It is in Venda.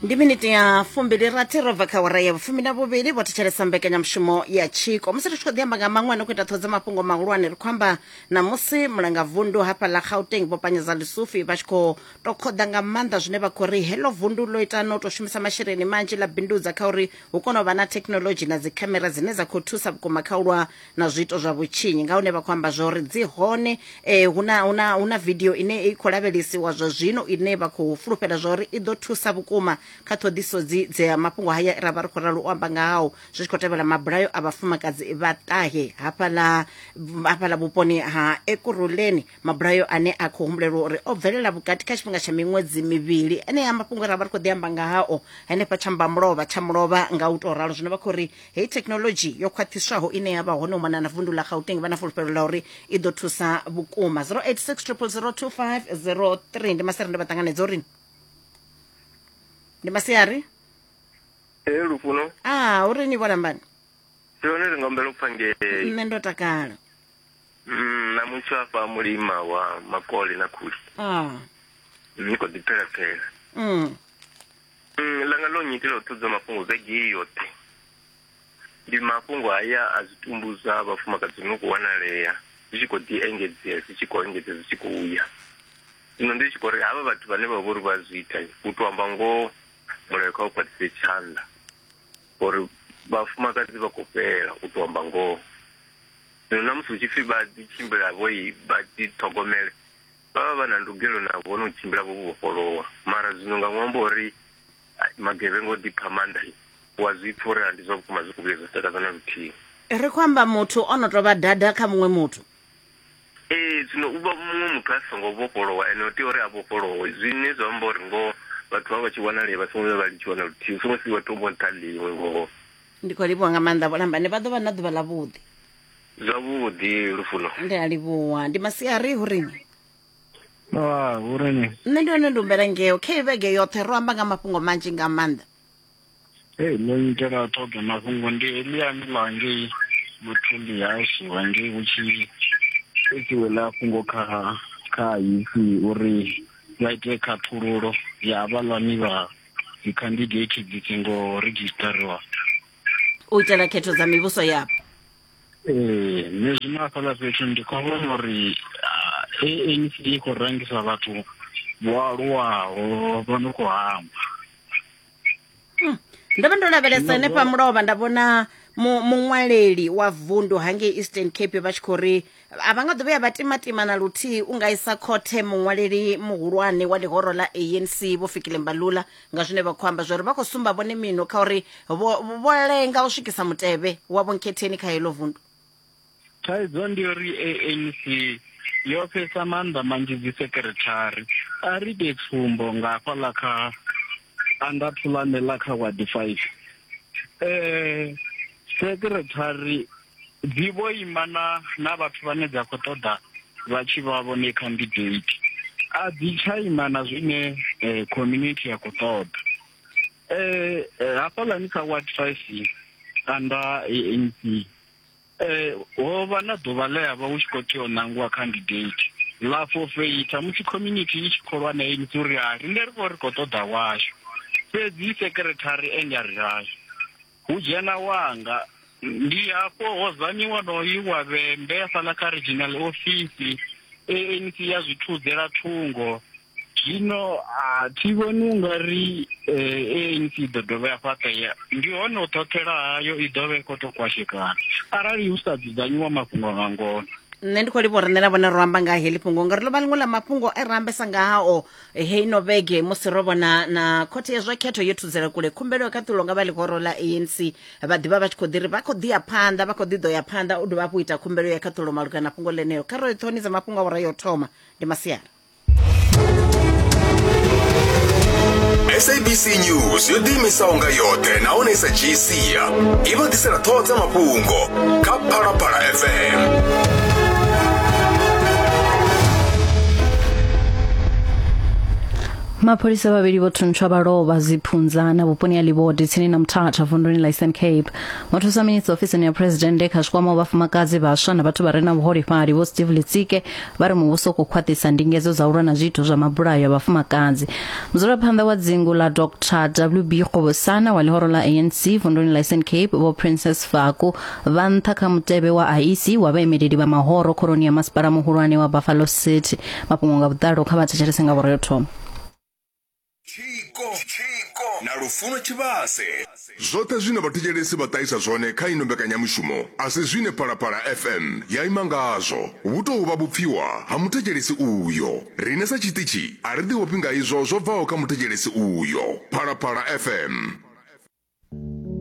ndi miniti ya fumbili rathi ro bva kha wara ya vhufumi na vhuvhili vho thetshelesa mbekanyamushumo ya tshiko musi ri tshi khou ḓi amba nga maṅwe no khou ita ṱhodza mafhungo mahulwane ri khou amba na musi mulanga vundu hafha ḽa gauteng vho panyeza lisufi vha tshi khou to khoḓa nga maanḓa zwine vha khou ri heḽo vundu ḽo ita no to shumisa masheleni manzhi ḽa bindudza kha uri hu kone u vha na thekhinolodzhi na dzikhamera dzine dza khou thusa vhukuma kha u lwa na zwiito zwa vhutshinyi nga hune vha khou amba zwori dzi hone eh, huna, huna, huna vidio ine i khou lavhelesiwa zwa zwino ine vha khou fulufhela zwori i ḓo thusa vhukuma kha ṱhoḓiso dzi dza mafhungo haya ra vha ri khou ralo u amba nga hao zwi tshi khou tevhela mabulayo a vhafumakadzi vha ṱahe hafhaḽa hafhaḽa vhuponi ha ekuruleni mabulayo ane a khou humbulelwa uri o bvelela vhukati kha tshifhinga tsha miṅwedzi mivhili enea mafhungo ra vha ri khou ḓi amba nga hao henefha tsha mbamulova tsha mulova nga u tou ralo zwino vha khou ri hei thekhinolodzhi yo khwaṱhiswaho ine ya vha hone u mona na vundu ḽa gauteng vha na fulufhelo ḽa uri i ḓo thusa vhukuma 0860002503 ndi masiari ndo vha ṱanganedza uri ndi masiari ee lufuno a ah, uri ni vholambani yone ri nga humbela u pfa ngei nṋe ndo takala mm, na mutsho afha mulima wa makole na khuli ah. ni khou ḓi phela phela mm. Mm, langa ḽo nnyitela u ṱudzwa mafhungo vhege yoṱhe ndi mafhungo haya a zwitumbu zwa vhafumakadzi no khou wanalea zwi tshi khou ḓi engedzea zwi tshi khou engedzea zwi tshi khou ya zwino ndi tshi khou ri havha vhathu vhane vha vho ri vha zwi ita u tou amba ngoho mulayo kha u khwaṱhise tshanḓa uri vhafumakadzi vha khou fhela u tou amba ngoho zwino na musi hu tshi pfhi vha ḓi tshimbila vho i vha ḓi ṱhogomele Vha vha vha na ndugelo na vhone u tshimbila vho vhofholowa. Mara zwino nga ṅwambo wa uri magevhenga o ḓipha maanḓa, wa zwi pfa uri a ndi zwa vhukuma zwi khou vhuya zwa takadza na luthihi. Ri khou amba muthu o no tou vha dada kha muṅwe muthu. Ee, zwino u vha muṅwe muthu a songo vhofholowa, ene o tea uri a vhofholowe. Zwine zwa amba uri ngoho vhathu vha vha tshi wanalea vha songo vhuya vha litshiwa na luthihi, u songo siiwa thombo nṱha ḽiṅwe ngoho. Ndi khou livhuwa nga maanḓa vhulambane, vha ḓo vha na ḓuvha ḽavhuḓi. Zwavhuḓi Lufuno. ndi a livhuwa ndi masiari hu rini Ah, hu ri ni. nṋe ndi hone ndi humbela ngeo khe vhege yoṱhe ro amba nga mafhungo manzhi nga maanḓa Hey, ndo itela ṱhoḓa mafhungo ndi Eliani ḽa ngei Muthundi yashu wa ngei hu tshi itiwe ḽa fhungo kha kha ipfi uri vha ite khaṱhululo ya havhaḽani vha dzikhandidate dzi songo redzhisiṱariwa. u itela khetho dza mivhuso yapo ee nṋe zwino hafhaḽa fhethu ndi khou vhona uri anc ah, i khou rangisa vhathu vho aluwaho vho no khou hangwa hmm. ndo vha ndo lavhelesa henefha mulovha nda vhona muṅwaleli wa vundu hangei eastern cape vha tshi khou ri a vha nga ḓo vhuya vha timatima na luthihi u nga isa khothe muṅwaleli muhulwane wa ḽihoro ḽa anc vho fikile mbalula nga zwine vha khou amba zwa uri vha khou sumba vhone mino kha uri vho lenga u swikisa mutevhe wa vhonkhetheni kha heḽo vundu thaidzo ndi uri anc yo fhesa maanḓa manzhi dzi sekirethari a ri ite tsumbo nga hafha ḽa kha anda thulane ḽa kha wadi five um sekirethari Dzi vho ima na na vhathu vhane dza khou ṱoḓa vha tshi vha vhone khandidate. A dzi tsha ima na zwine eh, community ya khou ṱoḓa. Eh, eh hafhaḽani kha ward 5 kanda ANC eh ho vha na ḓuvha ḽe ya vha hu tshi khou tea u ṋangiwa candidate ḽa forfeita musi community i tshi kholwa na ANC uri ha rine ri vho ri khou ṱoḓa washu fhedzi secretary ende a ri hashu Hu dzhena wanga. Ndi hafho ho zanyi wonoyu wa vhembe hafhaḽa kha regional office, ANC ya zwi thudzela thungo. Zwino a thi vhoni u nga ri ANC i ḓo dovha ya fhaṱea, ndi hone u ṱhoṱhela hayo i ḓo vha i khou tou kwashekana arali hu sa dzudzanyiwa mafhungo nga ngona. Nṋe ndi khou livha uri nṋe na vhone ro amba nga heḽi fhungo ngauri ḽo vha ḽiṅwe ḽa mafhungo e ra ambesa ngao heino vhege musi ro vhona na khothe ya zwa khetho yo thudzela kule khumbelo ya khaṱulo nga vha ḽihoro ḽa anc vha ḓivha vha tshi khou ḓi ri vha khou ḓi ya phanḓa vha khou ḓi ḓo ya phanḓa u dovha hafhu ita khumbelo ya khaṱulo malugana na fhungo ḽeneyo kha ro ṱhoni dza mafhungo a vhora yo thoma ndi masiara sabc news yo ḓiimisaho nga yoṱhe nahone sa gc ya i vha ḓisela ṱhoho dza mafhungo kha phalaphala fm mapholisa vhavhili vho thuntsha vha lovha dziphunza na vhuponi ha livhodi tsini na muthatha vunduni la eastern cape muthusa minista ofisini ya presidennde kha zwikwama wa vhafumakadzi vhaswa na vhathu vha re na vhuholefhali vho steve litsike vha ri muvhuso u khou khwaṱhisa ndingedzo dza u lwa na zwiito zwa mabulayo ya vhafumakadzi mudzulaphanḓa wa dzingu ḽa dr wb kgovosana wa ḽihoro ḽa anc vunduni ḽa eastern cape vho princess faku vha nṱha kha mutevhe wa iec wa vhaemeleli vha mahoro khoroni ya masipala muhulwane wa buffalo city mafhungo nga vhuḓalo kha vha thetshelese nga vhureo thoma Tshiko, tshiko na lufuno tshivhase. Zwoṱhe zwine vhathetshelesi vha ṱahisa zwone kha ino mbekanyamushumo a si zwine Phalaphala FM ya ima ngazwo. Vhu tou vha vhupfiwa ha muthetshelesi uyo. Riṋe sa tshiṱitshi a ri ḓiofhi nga izwo zwo bvaho kha muthetshelesi uyo. Phalaphala FM.